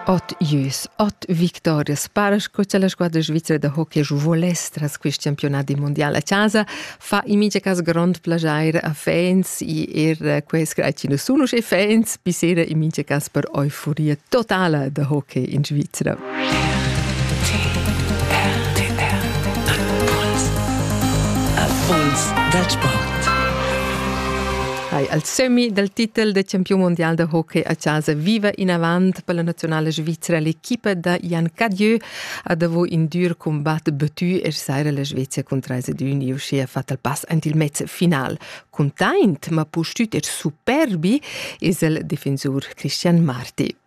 Ot Jüs, ot Victoria Sparsch, questa è la squadra svizzera da hockey voless tras quest campionat mondial a casa, fa in mincha cas grond plaschair a fans e er quels che sunus e fans, bisera in mincha cas per euforia totala da hockey in Svizzera. dal sport. Hai al semi dal titel da campiun mondial da hockey a casa viva inavant per la nazionale svizzera l'equipa da Jan Cadieu ha davo in dur combat battu e saira la Svezia con 3 ed 1 uschia fatto il pass ant il mezz final. Content ma pustut er superbi es el defensur Christian Marti.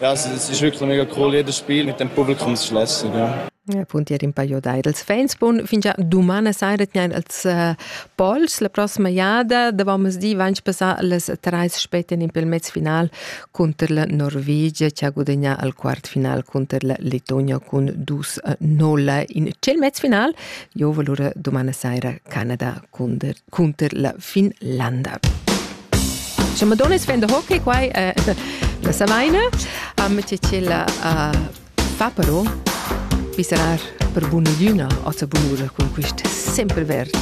Ja, es ist wirklich mega cool, jedes Spiel mit dem Publikum zu schließen. Ja. Appunto in paio d'idels fans bun fingià dumana saira tgnain als uh, pols la prossima jada davant di vain passà las trais spetten in pel mez final cunter la Norvegia che ha gudagnà al quart final cunter la Letonia cun dus 0 in cel mez final jo valura dumana saira Canada cunter cunter la Finlanda. Insomma, Madonna vende hockey qua eh, la Savaina. Um, Cecella uh, fa però pisserar per bun'ogliuna o sa bun'ura con quest sempre verd